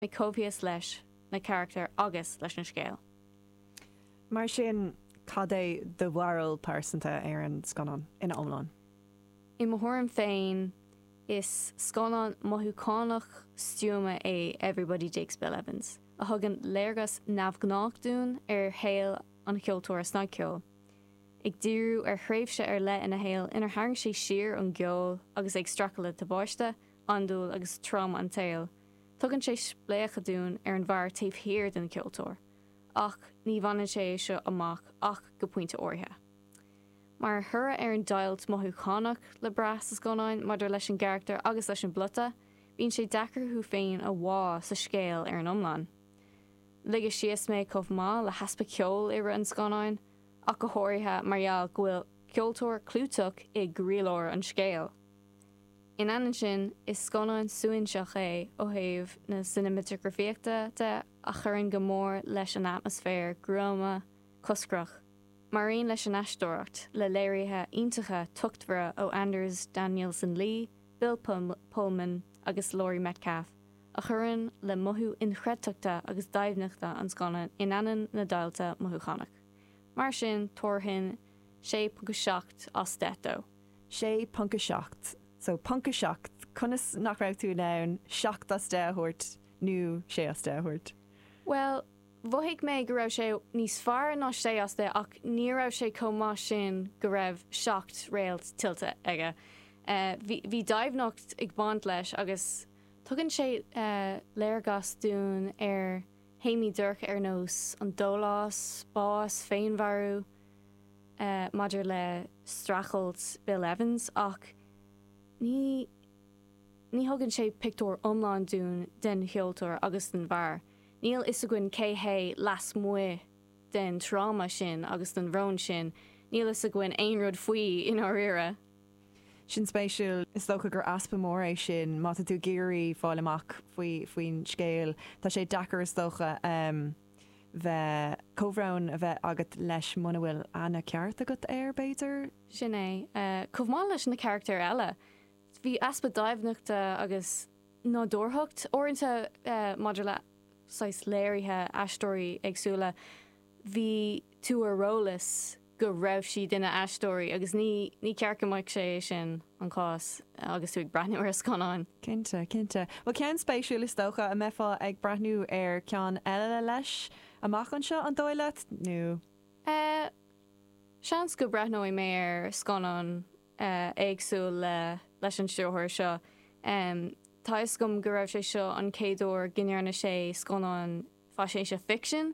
mé coimhthíos leis na carachtair agus leis an scéal. Mar sin, cad é do bharúil pearsanta ar an scannán ina iomlán? I mo thuairim féin, is scannán mothúchánach stuama é Everybody Digs Bill Evans, a thugann léargas neamhghnách dúinn ar shaol an cheoltóra snagcheoil, ag díriú ar thréimhse ar leith ina shaol inar tharraing sé siar ón gceol agus é ag streachailt le tubáiste, andúil agus tráma an tsaoil. Tugann sé spléachadh dúinn ar an bhfear taobh thiar den cheoltóir, ach ní bhaineann sé seo amach ach go pointe áirithe. Mar thoradh ar an deighilt mothúchánach le brath sa scannán maidir leis an gcarachtar agus leis an bplota, bíonn sé deacair thú féin a bhá sa scéal ar an iomlán. Ligeadh síos mé chomh maith le heaspa ceoil i rith an scannáin, ach go háirithe mar gheall go bhfuil ceoltóir clúiteach i gcroílár an scéil. In ainneoin sin, is scannán suaithinseach é ó thaobh na cineamatagrafaíochta de a chuireann go mór leis an atmaisféar gruama coscrach, mar aon leis an aisteoireacht, le léirithe iontacha tochtmhara ó Anders Danielsen Lie, Bill Pullman agus Laurie Metcalf, a chuireann le mothú inchreidteachta agus doimhneachta an scannáin in ainneoin na deighilte mothúchánach. Mar sin, thabharfainn 6.7 as 10 dó. 6.7 So ponc 7, conas nach raibh tú in ann 7 as 10 a thabhairt nó 6 as 10 a thabhairt? Bhuel, mhothaigh mé go raibh sé níos fearr ná 6 as 10 ach ní raibh sé chomh maith sin go raibh 7 réalt tuillte aige. Bhí, bhí doimhneacht ag baint leis agus tugann sé léargas dúinn ar théamaí dorcha ar nós an dólás, bás, féinmharú, maidir le streachailt Bill Evans ach ní ní thugann sé pictiúr iomlán dúinn den cheoltóir agus den bhfear. Níl fhios againn cé hé lasmuigh den tráma sin agus den bhrón sin, níl fhios againn aon rud faoi i ndáiríre. Sin spéisiúil. Is dócha gur easpa mór é sin má tá tú ag iarraidh fáil amach faoi faoin scéal. Tá sé deacair is dócha. bheith comhbhrón a bheith agat leis muna bhfuil aithne ceart agat air, b'fhéidir? Sin é. Chomh maith leis na carachtair eile, bhí easpa doimhneachta agus nádúrthacht uaireanta maidir le saghas léirithe aisteoirí éagsúla. Bhí tú ar eolas. go raibh siad ina n-aisteoirí agus ní ní ceart go mbeadh sé é sin an cás agus tú ag breathnú ar scannáin. Cinnte, cinnte. Bhuel ceann spéisiúil is dócha a mbeifeá ag breathnú ar cheann eile leis amach anseo an dóigh leat nó? Eh, seans go breathnóidh mé ar scannán eh éagsúil le leis an stiúrthóir seo. Em, tá fhios agam go raibh sé seo an chéad uair go ndearna sé scannán faisnéise ficsin,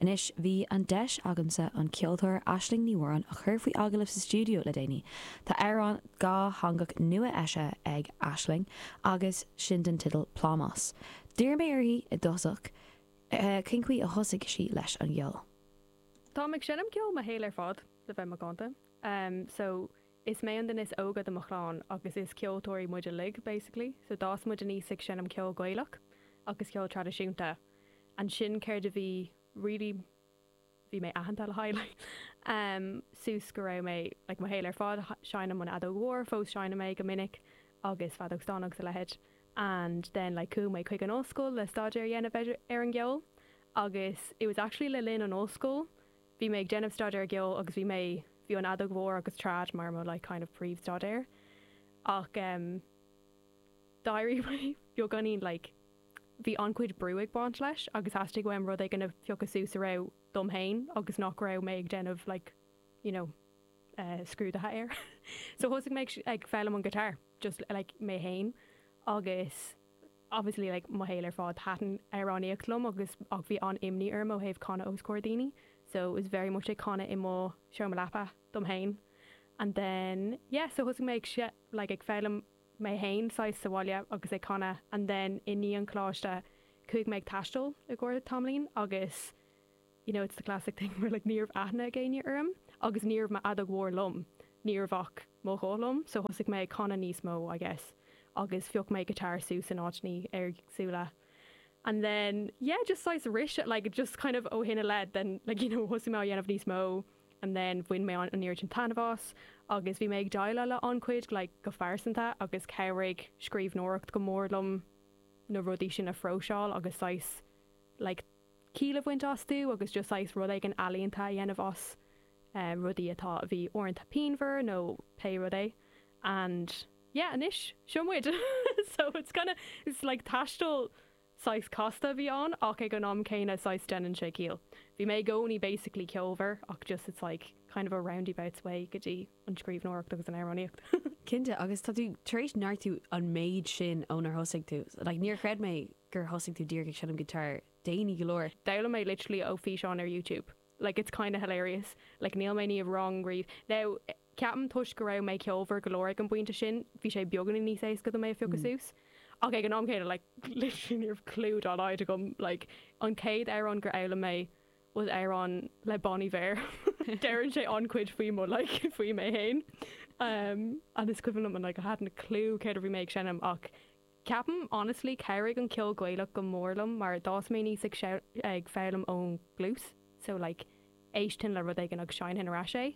Anois, bhí an deis agamsa an ceoltóir Aisling Ní Mhóráin a chur faoi agallamh sa stiúideo le déanaí. Tá amhrán dátheangach nua eisithe ag Aisling agus sin den tideal 'Plámás'. D'iarr mé uirthi i dtosach cén chaoi a thosaigh sí leis an gceol. Táim ag seinm ceoil mo shaol ar fad, le bheith macánta. So, is mé an duine is óige de mo chlann agus is ceoltóirí muid uilig, basically. So, d'fhás muid aníos ag seinm ceol Gaelach agus ceol traidisiúnta. ansin céard a bhí really bhí mé aitheanta le haghaidh like em suas go raibh mé like mo shaol ar fad ag seinm an fheadóg mhór fós seinnim é go minic agus feadóg stáin agus a leithéid and then like chuaigh mé chuig an ollscoil le staidéar a dhéanamh ar ar an gceol agus it was actually le linn an ollscoil bhí mé ag déanamh staidéar ceol agus bhí mé bhí an fheadóg mhór agus trad mar mo like kind of príomh staidéar ach em d'éirigh mé beagáinín like Bhí an-chuid brú ag baint leis agus theastaigh uaim rud éigin a phiocadh suas a raibh dom féin agus nach raibh mé ag déanamh like you know eh scrúdaithe air so thosaigh mé ag ag foghlaim an guitar just like mé féin agus obviously like mo shaol ar fad thaitin amhránaíocht liom agus ach bhí an-imní orm ó thaobh canadh os comhair daoine so it was very much ag canadh i mo seomra leapa dom féin and then yeah so thosaigh mé ag like ag foghlaim mé fhéin saghas sa bhaile agus ag canadh and then i ndiaidh an choláiste chuaigh mé ag taisteal i gcomhair tamaillín agus you know it's the classic thing where like ní raibh aithne ag éinne orm agus ní raibh m'fheadóg mhór liom ní raibh ach mo ghuth liom so thosaigh mé ag canadh níos mó I guess agus phioc mé guitar suas in áiteannaí éagsúla and then yeah just saghas arís like just kind of ó shin i leith then like you know thosaigh mé á dhéanamh níos mó. and then bhain mé an oiread sin taitneamh as agus bhí mé ag déileáil le an-chuid like go phearsanta agus chabhraigh scríbhneoireacht go mór liom na rudaí sin a phróiseáil agus saghas like ciall a bhaint astu agus just saghas rud éigin ealaíonta a dhéanamh as eh rudaí atá a bhí uaireanta pianmhar nó pé rud é and yeah anois seo muid so it's kinda it's like taisteal Saghas casta a bhí ann ach ag an am céanna saghas deineann sé ciall. Bhí mé i gcónaí basically ceolmhar ach just it's like kind of a roundabouts way go dtí an scríbhneoireacht agus an amhránaíocht. Cinnte agus tá tú tar éis neartú an méid sin ó thosaigh tú. Like níor chreid mé gur thosaigh tú díreach ag seinm guitar déanaí go leor. D'fhoghlaim mé literally ó fhíseáin ar YouTube. like it's kinda hilarious like níl mé ní bhím wrong riamh no ceapaim toisc go raibh mé ceolmhar go leor ag an bpointe sin bhí sé beagáinín níos éasca dom é a phiocadh suas ach ag an am céanna like literally ní raibh clue dá laghad agam like an chéad amhrán gur fhoghlaim mé was amhrán le Bon Iver deireann sé an-chuid faoi mo like faoi mé fhéin um and is cuimhin liom an like I hadn't a clue céard a bhí mé ag seinm ach Ceapaim, honestly, chabhraigh an ceol Gaelach go mór liom mar d'fhás mé aníos ag ag foghlaim ón gcluas so like éistfinn le rud éigin agus seinnfinn ar ais é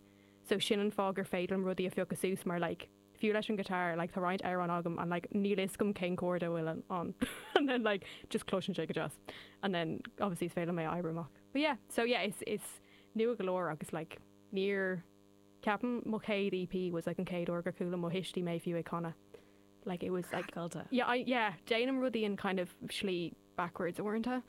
so sin an fáth gur féidir liom rudaí a phiocadh suas mar like fiú leis an guitar like tá roinnt amhráin agam and like níl fhios agam cén chord a bhfuil ann and then like just cloiseann sé go deas and then obviously is féidir liom é a oibriú amach but yeah so yeah is is nua go leor agus like níor cheapaim mo chéad EP was like an chéad uair gur chuala mo thuistí mé fiú ag canadh Like it was like Caillte. Yeah I yeah déanaim rudaí in kind of slí backwards uaireanta.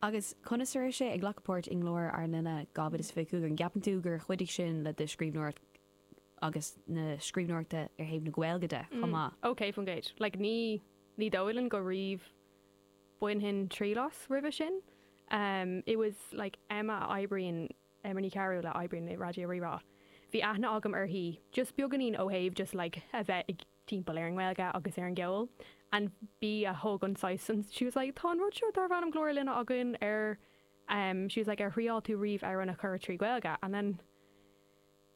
Agus conas a raibh sé ag glacadh páirt i nGlór Linne 2025? An gceapann tú gur chuidigh sin le do scríbhneoireacht agus na scríbhneoireachta ar thaobh na Gaeilge de chomh maith? Mm ok fun fact. Like ní ní dóigh liom go riamh bainfinn triail as roimhe sin. Um it was like Emma a oibríonn Emma Ní Chearúil a oibríonn i Raidió Rí-Rá. Bhí aithne agam uirthi just beagáinín ó thaobh just like a bheith ag timpeall ar an nGaeilge agus ar an gceol and bhí a thug an saghas and she was like tá an rud seo darb ainm Glór Linne againn ar em she was like ar thriáil tú riamh amhrán a chumadh trí Ghaeilge and then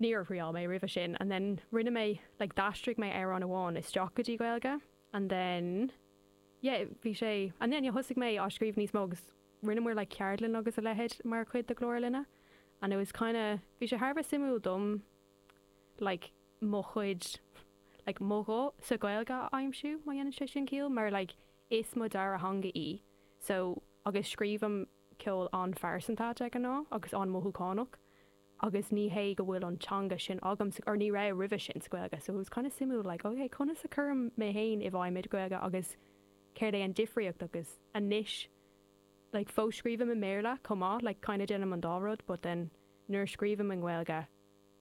níor thriáil mé roimhe sin and then rinne mé like d'aistrigh mé amhrán amháin isteach go dtí Gaeilge and then yeah bhí sé and then yeah thosaigh mé á scríobh níos mó agus rinne muid like ceardlann agus a leithéid mar chuid de Glór Linne and it was kind of bhí sé thar a bheith suimiúil dom like mo chuid like mo ghuth sa Ghaeilge a aimsiú má dhéanann sé sin ciall mar like is mo dara theanga í so agus scríobhaim ceol an-phearsanta de ghnáth agus an-mothúchánach agus ní hé go bhfuil an teanga sin agam sa or ní raibh roimhe sin sa Ghaeilge so it was kind of suimiúil like ok conas a chuirim mé féin i bhfeidhm i Gaeilge agus céard é an difríocht agus anois like fós scríobhaim i mBéarla chomh maith like kind of déanaim an dá rud but then nuair a scríobhaim i nGaeilge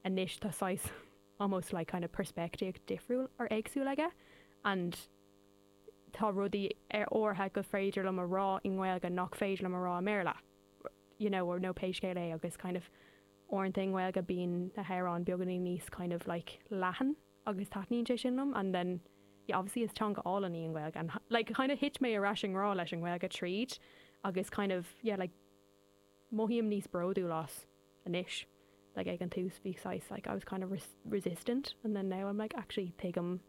anois tá saghas almost like kind of peirspictíocht difriúil or éagsúil aige and tá rudaí ar áirithe gur féidir liom a rá i nGaeilge nach féidir liom a rá i mBéarla you know or nó pé scéal é agus kind of uaireanta i nGaeilge bíonn na hamhráin beagáinín níos kind of like leathan agus taitníonn sé sin liom and then yeah obviously is teanga álainn í an Ghaeilge and like kind of thit mé ar ais i ngrá leis an Ghaeilge tríd agus kind of yeah like Mothaím níos bródúil as anois. Like ag an tús bhí saghas like I was kind of resistant and then now I'm like actually tuigim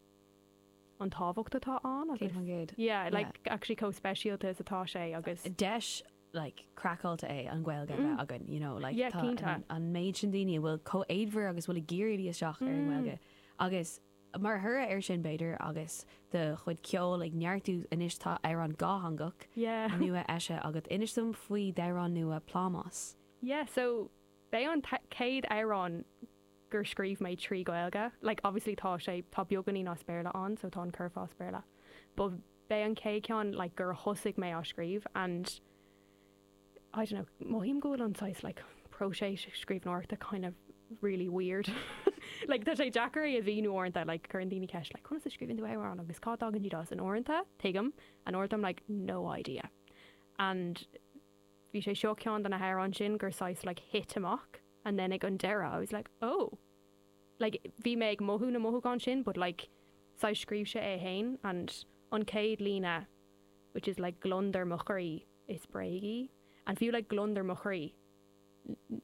an tábhacht atá ann agus 100%. yeah like yeah. actually chomh speisialta is atá sé agus. deis like craiceáilte é an Ghaeilge a bheith againn you know like yeah cinnte. tá an méid sin daoine a bhfuil chomh éadmhar agus a bhfuil ag iarraidh isteach ar an nGaeilge agus. Mar thoradh ar sin, b'fhéidir, agus do chuid ceoil ag neartú anois tá amhrán dátheangach Yeah! nua eisithe agat. Inis dom faoi d'amhrán nua 'Plámás'. Yeah so b'é an céad amhrán gur scríobh mé trí Gaeilge, like obviously tá sé, tá beagáinín as Béarla ann so tá an curfá as Béarla but b'é an céad ceann like gur thosaigh mé á scríobh and, I don't know, mothaím go bhfuil an saghas like próiseas scríbhneoireachta kind of really weird. Like tá sé deacair é a mhíniú uaireanta, like cuireann daoine ceist like conas a scríobhann tú amhrán agus cá dtagann siad as? And uaireanta, tuigim, and uaireanta I'm like no idea. And bhí sé seo ceann de na hamhráin sin gur saghas like thit amach and then ag an deireadh I was like oh! Like bhí mé ag mothú na mothúchán sin but like saghas scríobh sé é fhéin and an chéad líne which is like gliondar mo chroí. Is bréag í. And fiú like gliondar mo chroí.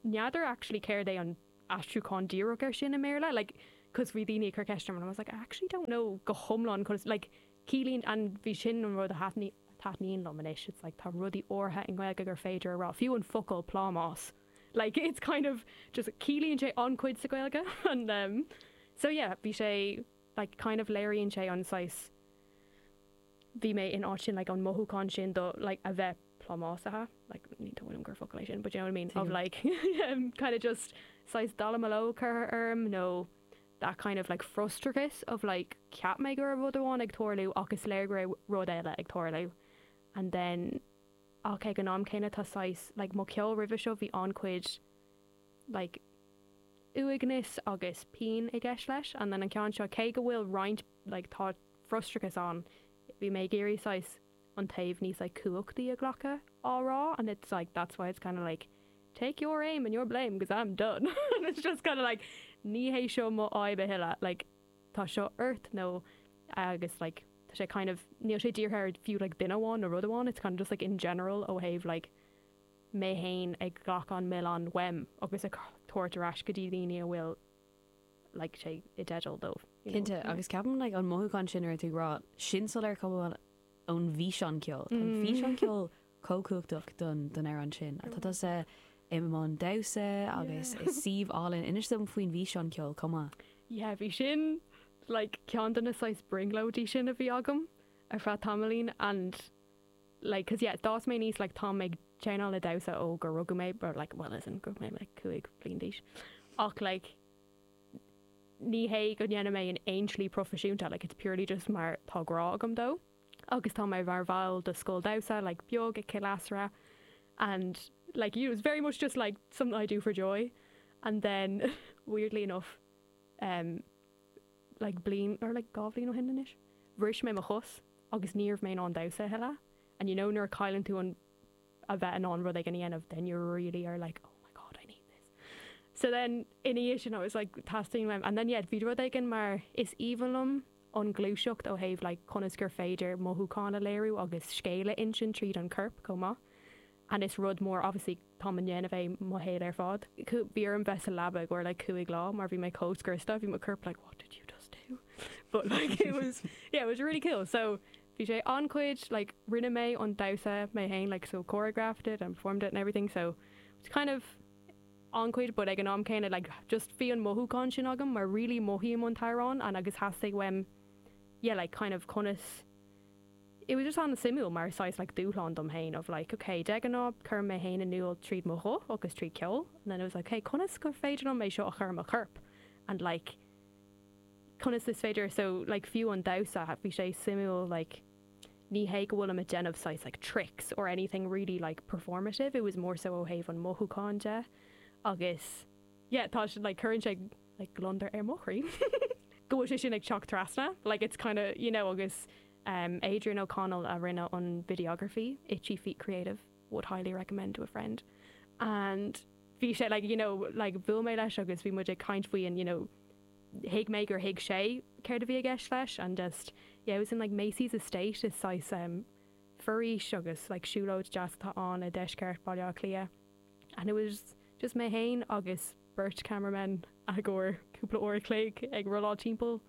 N'fheadar actually céard é an aistriúchán díreach ar sin i mBéarla. Like, cos bhí daoine ag cur ceist orm and I was like I actually don't know go hiomlán conas like ciallaíonn and bhí sin an rud a thaitníonn taitníonn liom anois it's like tá rudaí áirithe i nGaeilge gur féidir a rá, fiú an focal plámás like it's kind of just ciallaíonn sé an-chuid sa Gaeilge and um so yeah bhí sé like kind of léiríonn sé an saghas Bhí mé in áit sin like an mothúchán sin de like a bheith plámásaithe like ní dóigh liom gur focal é sin but do you know what I mean of like kind of just saghas dallamullóg curtha orm nó that kind of like frustrachas of like cheap mé go raibh rud amháin ag tarlú ach is léir go raibh rud eile ag tarlú and then ach ag an am céanna tá saghas like mo cheol roimhe seo bhí an-chuid like uaigneas agus pian i gceist leis and then an ceann seo cé go bhfuil roinnt like tá frustrachas ann bhí mé ag iarraidh saghas an taobh níos like cumhachtaí a ghlacadh á rá and it's like that's why it's kind of like take your aim and your blame because I'm done and it's just kind of like ní hé seo mo fhadhb a thuilleadh like tá seo ort nó agus like tá sé kind of níl sé dírithe ar fiú like duine amháin nó rud amháin it's kind of just like in general ó thaobh like mé fhéin ag glacadh an milleán uaim agus á thabhairt ar ais go dtí daoine a bhfuil like sé i dteideal dóibh. Cinnte, agus ceapaim like an mothúchán sin ar a dtagraíonn sin soiléir chomh maith ón bhfíseán ceoil. Tá an físeán ceoil chomh cumhachtach don don amhrán sin. Tá tusa i mbun damhsa agus i suíomh álainn inis dom faoin bhfíseán ceoil chomh maith. Yeah, bhí sin like ceann de na saghas brionglóidí sin a bhí agam ar feadh tamaillín and like 'cause yeah d'fhás mé aníos like tá mé ag déanamh damhsa ó gur rugadh mé like well as in go raibh mé like cúig bliain d'aois ach like ní hé go ndéanaim é in aon tslí proifisiúnta like it's purely just mar tá grá agam dó agus tá mé mar bhall de scoil damhsa like beag i gCill Easra and like you know it's very much just like something I do for joy and then weirdly enough um like bliain or like dhá bhliain ó shin anois bhris mé mo chos agus ní raibh mé in ann damhsa a thuilleadh and you know nuair a chailleann tú an a bheith in ann rud éigin a dhéanamh then you really are like oh my god I need this so then ina dhiaidh sin I was like teastaíonn uaim and then yeah bhí rud éigin mar is aoibhinn liom an ghluaiseacht ó thaobh like conas gur féidir mothúchán a léiriú agus scéal a insint tríd an gcorp chomh maith and is rud mór obviously táim á dhéanamh mo shaol ar fad. Bhí orm bheith sa leaba i gcomhair like cúig lá mar bhí mé chomh scriosta, bhí mo corp like what did you just do? but like it was yeah it was really cool so bhí sé an-chuid like rinne mé an damhsa mé fhéin like so choreographed it and performed it and everything so it's kind of an-chuid but ag an am céanna like just bhí an mothúchán sin agam mar really mothaím an t-amhrán and agus theastaigh uaim yeah like kind of conas it was just an-suimiúil mar saghas like dúshlán dom féin of like ok de ghnáth cuirim mé féin in iúl tríd mo ghuth agus tríd ceol and then it was like ok conas gur féidir liom é seo a chur i mo chorp and like conas is féidir so like fiú an damhsa bhí sé suimiúil like ní hé go bhfuilim a déanamh saghas like tricks or anything really like performative it was more so ó thaobh an mothúcháin de agus yeah tá like cuireann sé like gliondar ar mo chroí go bhfuil sé sin ag teacht trasna like it's kind of you know agus um Adrian O'Connell a rinne an videography, Itchy Feet Creative, would highly recommend to a friend and bhí sé like you know like bhuail mé leis agus bhí muid ag caint faoi an you know thuig mé gur thuig sé céard a bhí i gceist leis and just yeah it was in like Massy's Estate is saghas um foraois agus siúlóid deas atá ann i deisceart Bhaile Átha Cliath and it was just mé fhéin agus beirt cameramen i gcomhair cúpla uair a chloig ag rolláil timpeall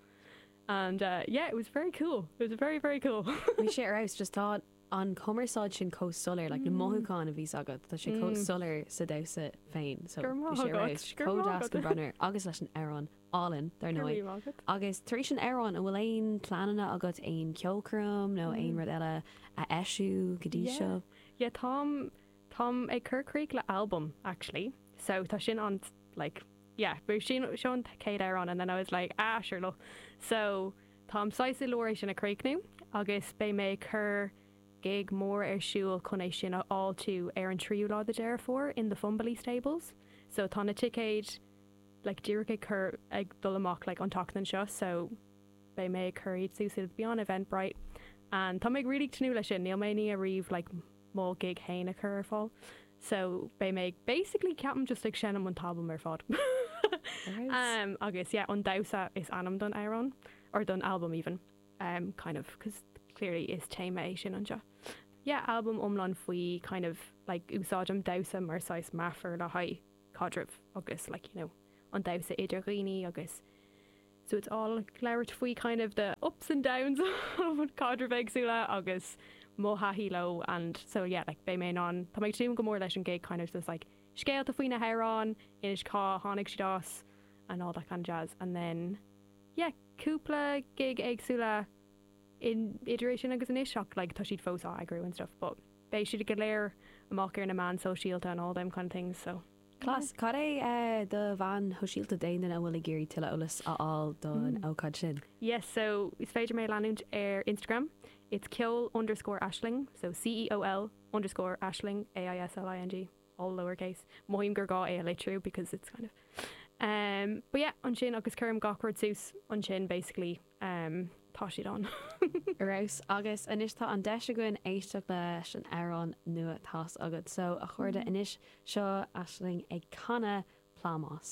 and uh yeah it was very cool it was very very cool. Bhí sé ar fheabhas just tá an chumarsáid sin chomh soiléir like na mothúcháin a bhíos agat tá sé chomh soiléir sa damhsa féin so bhí sé ar fheabhas chomh deas go raibh maith agat agus leis an amhrán álainn dar ndóigh. Go raibh maith agat. Agus tar éis an amhráin an bhfuil aon pleananna agat aon ceolchoirm nó aon rud eile a eisiúint go dtí seo? Yeah yeah táim Táim ag cur críoch le albam actually so tá sin an like yeah bhí sin seo an chéad amhrán and then I was like ah sure lo so táim saghas i lár é sin a chríochnú agus beidh mé ag cur gig mór ar siúl chun é sin a fháiltiú ar an tríú lá de Deireadh Fómhair in the Fumbally Stables so tá na ticéid like díreach ag cur ag dul amach like an tseachtain seo so beidh mé ag cur iad suas it'll be on Eventbrite and tá mé ag really tnúth leis sin níl mé ní riamh like mo ghig féin a chur ar fáil so beidh mé basically ceapaim just like seinm an t-albam ar fad agus yeah an damhsa is ainm don amhrán or don albam even kind of cos clearly is téama é sin anseo yeah albam iomlán faoi kind of like úsáidim damhsa mar saghas meafar le haghaidh caidrimh agus like you know an damhsa idir dhaoine agus so it's all ag labhairt faoi kind of the ups and downs of caidrimh éagsúla agus mo thaithí leo and so yeah like beidh mé in ann Tá mé ag tnúth go mór leis an gig kind of just like scéalta faoi na hamhráin a insint cá tháinig siad as and all that kind of jazz and then yeah cúpla gig éagsúla in idir é sin agus anois ach like tá siad fós á eagrú and stuff but beidh siad go léir amach ar na meán sóisialta and all them kind of things so Class, cad é do mheáin shóisialta d'aon duine a bhfuil ag iarraidh tuilleadh eolas a fháil don ócáid sin? Yes, so is féidir mé a leanúint ar Instagram, it's ceol underscore aisling, so C-E-O-L underscore aisling, A-I-S-L-I-N-G, all lower case, mothaím gur gá é a litriú because it's kind of, um, but yeah, ansin agus cuirim gach rud suas ansin basically. um tá siad ann. Class, agus anois tá an deis againn éisteacht leis an amhrán nua atá agat. So a chairde anois seo Aisling ag canadh Plámás.